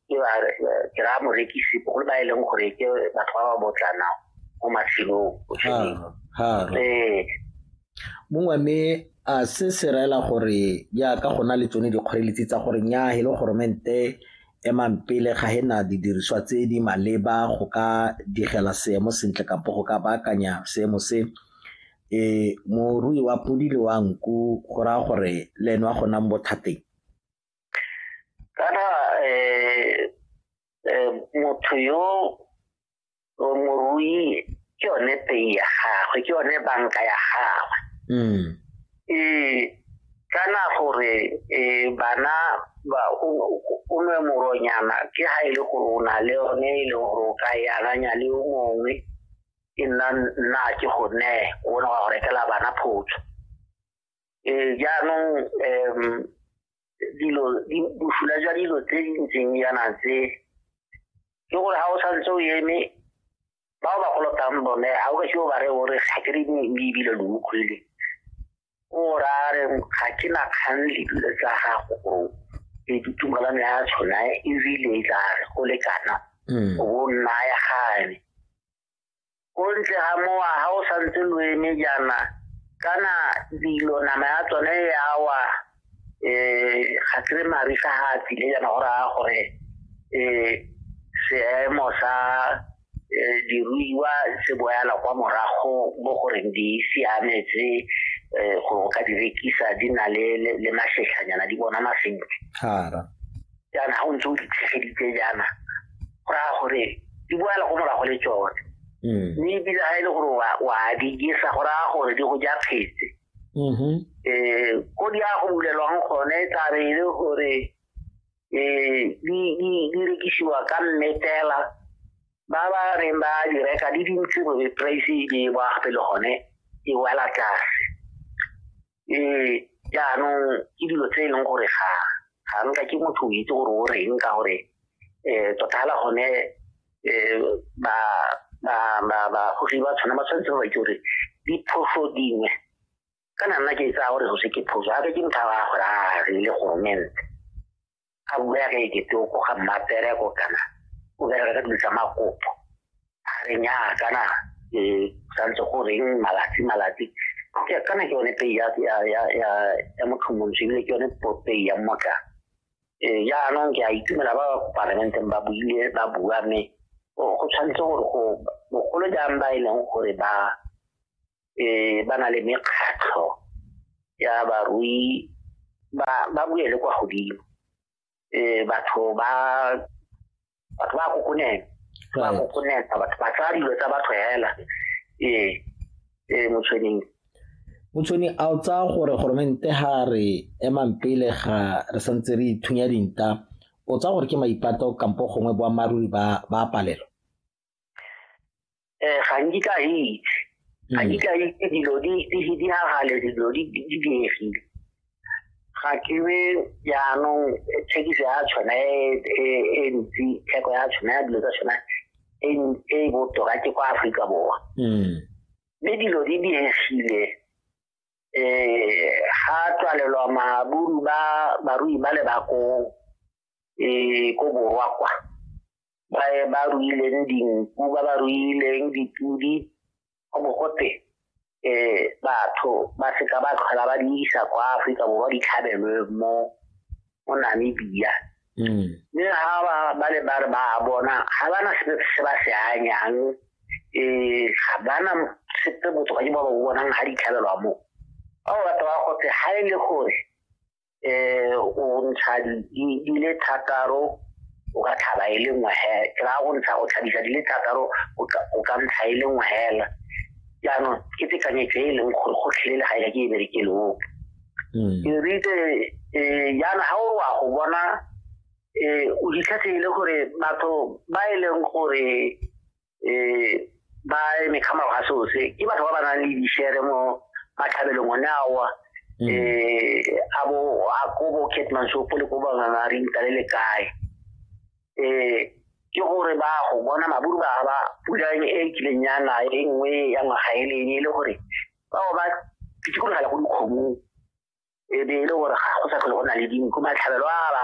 ke ba ke ra morekisi bogolo ba e leng gore ke batho ba ba botlana mo matshelong ee mongwe mme a se se reela gore jaaka go na le tsone dikgoreletsi tsa gore nya e le goromente emang pele ga e na didiriswa tse di maleba go ka digela seemo sentle kampo go ka baakanya seemo se e morui wa podi le wa nku go raya gore le ene wa go nang bothateng kana eh, eh, motho yo morui ke yone pei ya gagwe ke yone banka ya gagwe mm. e kana gore e bana ba o nwe moronyana ke ha e le gore o na le yone e le gore o ka e akanya le o mongwe e nna nna ke go ne o ne wa go rekela bana photso eh, jaanong um dilo bosula jwa dilo tse di ntseng yana tse ke gore ga o santse o eme ba o ba kolotang bone ga o ka seo ba re o re ga ke re ebile lo utlwele o ra re ga ke na kgang le dilo tsa gago gore e ditumalano ya tshona ebile e tla re go lekana mm. o bo nna ya gane ko ntle ga mowa ga o santse lo eme jaana kana dilo nama ya tsone ya wa um ga kere marisa ga a tsile jaana go raya gore um seemo sa um diruiwa se boyala kwa morago mo goreng di siametse um go ka di rekisa di na le masetlhanyana di bona masentle jaana ga o ntse o di tshegeditse jaana go raya gore di boela go morago le tsone mm. mme ebile ga e le gore wa di jesa go raya gore di go ja phetse um mm-hmm. eh, ko di ya go bulelwang gone tla re e le gore um di rekisiwa ka mmetela ba ba reng ba di reka di dintsi gore price e di e boa gape le gone e wela tlase um jaanong ke dilo tse e leng gore ga ga nka ke motho o itse gore o reng ka gore um tota fela gone um ba bagogi ba tshwana ba tshwanetse ba ke gore diphoso dingwe kana nna ke tsaya gore go se ke phoso gape ke motho a gore a re le goromente ga bua ya re ke toko ga mmapereko kana o bereka ka dilo tsa makopo a re nyaa kana e santse go reng malatsi malatsi ke kana ke yone pei ya ya ya ya ya motlhomontsho ebile ke yone pei ya mmotla ee jaanong ke a itumela ba parlamenteng ba buile ba bua mme go tshwanetse gore go bogolo jang ba e leng gore ba eh ba na le mekgatlho ya barui ba ba buye le kwa godimo eh batho ba batho ba kokonela ba kokonela batho ba tsaya dilo tsa batho hela eh eh motshweneng motshweni a o tsaya gore goromente ga re emang pele ga re santse re ithunya dinta o tsaya gore ke maipato kampo gongwe boammaaruri ba ba palelo eh ga nkitla a itse ga hmm. nkitla a itse dilo di gagale dilo di diegile ga ke be jaanong thekiso ya tshwana e, e, e ntsi theko ya tshwana ya dilo tsa tshwana e, e botoka ke kwa aforika borwa hmm. mme dilo di diegile um eh, ga tswalelwa maburu ba barui ba le bakong um eh, ko borwa kwa ba ba ruileng dinku ba ba ruileng dipudi go bo gote um batho ba seka ba tlhola ba di isa kwa aforika borwa di tlhabelwe mo mo namibia mm. mme ga ba ba le ba re ba bona ga ba na sepe se ba se anyang um ga ba na sepe botho ba ke ba ba bonang ga di tlhabelwa mo ba ba batho ba gote ga e le gore eh o ntsha di di le thataro o ka tlhaba e le nngwe he ke ra go ntsha go tlhabisa di le thataro o ka o ka ntsha e le nngwe hela jaanong ke tekanyetso e e leng gore go tlhelele ga e ka ke e bereke le ope ke ritse um jaana ga o re wa go bona um o ditlhatlhe e le gore batho ba e leng gore um ba eme ka morago ga seo se ke batho ba ba nang le dishere mo matlhabelong one awa um a bo a ko bo catman sopo le ko banganga re ntale le kae um ke gore ba go bona maburu ba ba pulane e kileng ya na e nngwe ya ngwaga e lene e le gore bao ba pitsikologela go dikgomong e be e le gore ga go sa tlhole go na le dinku matlhabelo a ba